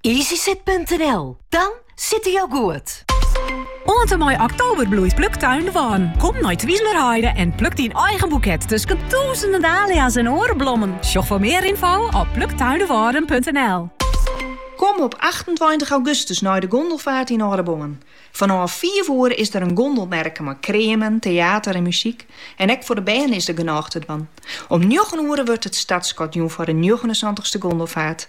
Easysit.nl, dan sitte jo goed! Oant en mei oktober bloeit Pluktuin de Wâlden. Kom nei Twizelerheide en pluk dyn eigen boeket tusken tûzenen dahlia's en oare blommen. Sjoch foar mear ynfo op pluktuindewâlden.nl. Kom op achtentweintich augustus nei de gondelfaart yn Aldeboarn. Fanôf fiif oere is der in gondelmerke mei kreamen, teater en muzyk. En ek foar de bern is der genôch te dwaan. Om njoggen oere wurdt it startskot jûn foar de njoggenensantichste gondelfaart.